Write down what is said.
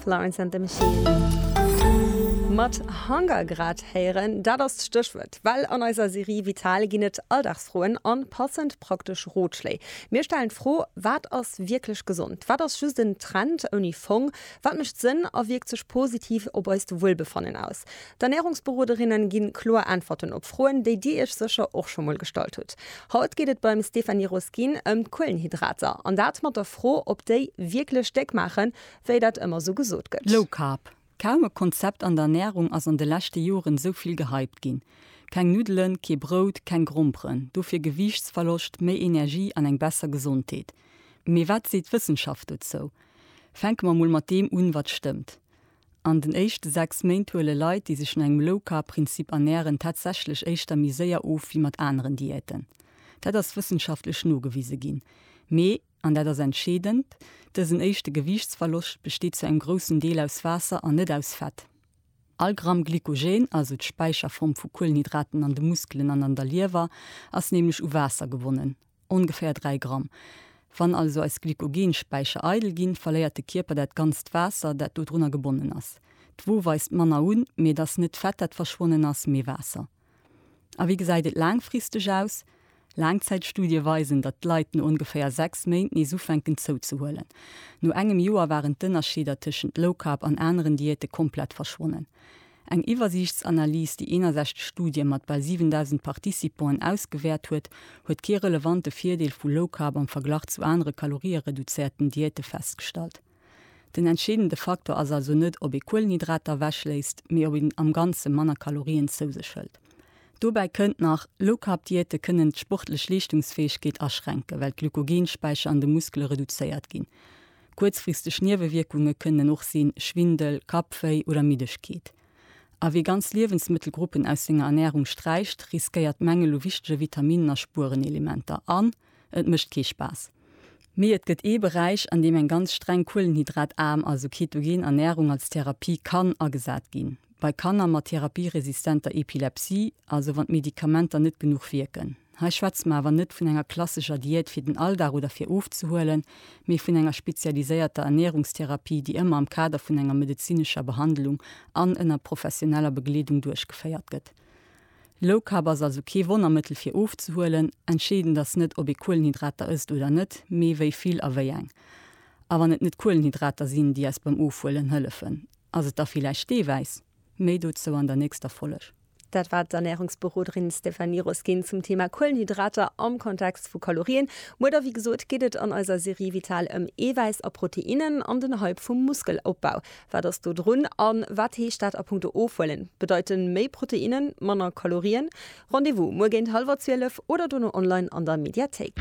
Florence and the Machine mat Hunger grad héieren. Dat ass d'Stéchwuert, well an eiser Serie Vital ginn et Alldagsfroen an passend praktesch Rotschléi. Mir stellen d'Fro, Wat ass wierklech gesond? Wat ass just en Trend ouni Fong? Wat mécht Sënn a wierkt sech positiv op eist Wuelbefannen aus? D'Ernärungsberoderinnen ginn kloer Äntwerten op Froen, déi dir iech sécher och scho mol gestallt hutt. Haut geet et beim Stéphanie Roskin ëm d'Kuelenhydrater, an dat mat der Fro, ob déi wierklech déck maachen, wéi dat ëmmer sou gesot gëtt. Low Carb, kaum e Konzept an der Ernärung ass an de leschte Joren esou vill gehypt ginn. Keng Nuddelen, kee Brout, keng Gromperen, dofir Gewiichtsverloscht, méi Energie an eng besser Gesondheet. Mee wat seet d'Wëssenschaft dozou? Fänke mer mol mat deem un, wat stëmmt. An den éischte 6 Méint huele Leit, déi sech no engem Low-Carb-Prinzip ernären, tatsächlech éischter méi séier of wéi mat aneren Diäten. Dat ass wëssenschaftlech nogewise ginn. Mee, an dat ass entscheedend, dësen éischte Gewiichtsverloscht besteet zu engem groussen Deel aus Waasser an net aus Fett. All Gramm Glykogen, also d'Späicherform vu Kuelenhydraten an de Muskelen an an der Liewer, ass nämlech u Waasser gewonnen. Ongeféier 3 Gramm. Wann also eis Glykogen-Späicher eidel ginn, verléiert de Kierper dat ganzt Waasser, dat dodrunner gebonnen ass. D'Wo weist manner un, mee et ass net d'Fett, dat verschwonnen ass, mee Waasser. A wéi gesäit et laangfristeg aus? Laangzäitstudie weisen, datt d'Leit no ongeféier 6 Méint nees ufänken zouzehuelen. No engem Joer waren d'Ënnerscheeder tëschent Low Carb an aneren Diäte komplett verschwonnen. Eng Iwwersiichtsanalys, déi 61 Studie mat bal 7.000 Participanten ausgewäert huet, huet kee relevante Virdeel vu Low Carb am Verglach zu anere kaloriereduzéierten Diäte festgestallt. Den entscheedende Faktor ass also net, ob ee Kuelenhydrater ewechléisst, mee ob een am Ganze manner Kalorien zou sech hëlt. Dobäi kënnt nach, Low Carb Diäte kënnen d'sportlech Leeschtungsfäegkeet aschränken, well d'Glykogen-Späicher an de Muskele reduzéiert ginn. Kuerzfristeg Niewewierkunge kënnen och sinn, Schwindel, Kappwéi oder Middegkeet. A wie ganz Liewensmëttelgruppen aus senger Ernärung sträicht, riskéiert d'Mängel u wichtege Vitaminnen a Spuerenelementer an et mécht kee Spaass. Mee et gëtt ee Beräich, an deem eng ganz streng kuelenhydrataarm, also ketogen Ernärung als Therapie kann agesat ginn, bei Kanner mat therapieresistenter Epilepsie, also wann d'Medikamenter net genuch wierken. Hei schwätze mer awer net vun enger klassescher Diät fir den Alldag oder fir ofzehuelen, mee vun enger spezialiséierter Ernährungstherapie, déi ëmmer am Kader vun enger medezinescher Behandlung an ënner professioneller Begleedung duerchgeféiert gëtt. Low Carb ass also kee Wonnermëttel fir ofzehuelen. Entscheedend ass net, ob ee Kuelenhydrater ësst oder net, mee wéi vill a wéi eng. A wann et net d'Kuelenhydrater sinn, déi eis beim Ofhuelen hëllefen, ass et da villäicht d'Eewäiss? Méi dozou an der nächster Folleg. Dat war d'Ernährungsberoderin Stéphanie Roskin zum Thema Kuelenhydrater am Kontext vu Kalorien. Muer da, wéi gesot, geet et an eiser Serie Vital ëm Eewäiss a Proteinnen an den Hype vum Muskelopbau. Wat ass do drun a wat heescht dat a punkto Ofhuelen? Bedeiten méi Proteinnen manner Kalorien? Rendez-vous muer géint hallwer 12 oder dono online an der Mediathéik.